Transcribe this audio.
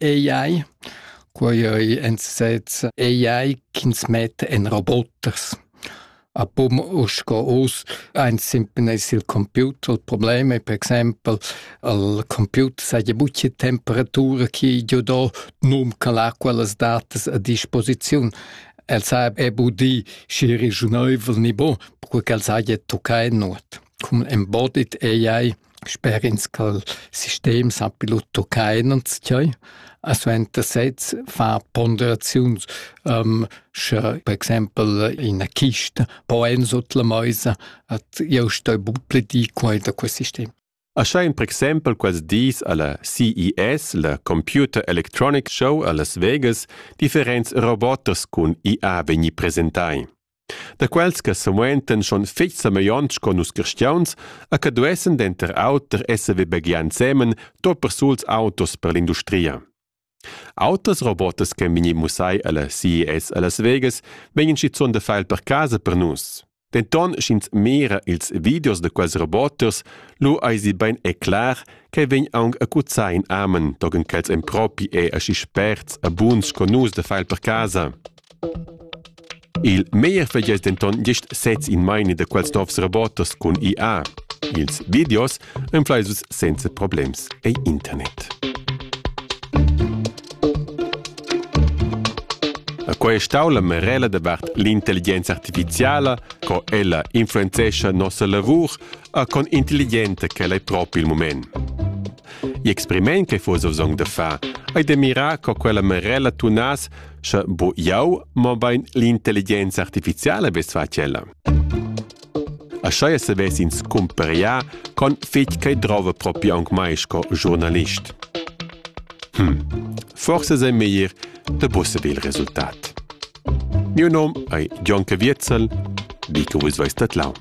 AI. Quei ei en sez AI ch'ins met en roboters. A pum uss go us ein simpen es il computer. Il problem è per exempel al computer sa ja bucce temperatura chi giu do num ca l'acqua las datas a disposiziun. El sa è bu di schi regiuneuvel ni bo, perque ch'el sa ja toccai nuot. Cum embodied AI Sper ins cha'l sistem sappi lut tuccar inanzchai, a suenter sez far ponderaziuns, sche per exaimpel ina chista po eir sut la maisa, at eu sto but pli di quai da quest sistem. Aschain per exaimpel quels dis a la CES, la Computer Electronic Show a Las Vegas, differents robots cun IA vegni presentai. da quels che semuentan schon fetg semeglionts con nus cristiauns e che duessen denter auter esser vebegliai ensemen tot persuls autos per l'industria. Autras robotas che vegni mussai alla CES a Las Vegas vegnan schizun da file per casa per nus. Denton sch'ins mira ils videos de quels roboters, lu eisi bein e clar che vegn aunc acuzai in amen togen quels en propi e aschi sperts e buns con nus de file per casa. Il meglier feglia es denton gist sez in meini da quels novs robots cun IA. Ils videos inflais vus senza problems ei internet. Quai è stau la merella davart l'intelligenza artificiala, co ella influenzescha nossa lavur, a con intelligenta ch'ella è propi il moment. Gli experiment che fosse bisogno da fare, hai da mirare co quella merella tunas Sche bo jau, mobein l'intelligenza artificiala vess fatg ella. Aschia se ves ins cumperià con fetg che drova propi aunc mai sco giornalist. Hm, forse sei meglier de busse il resultat. Mio nom ei John Caviezel, dico vus veis dat lau.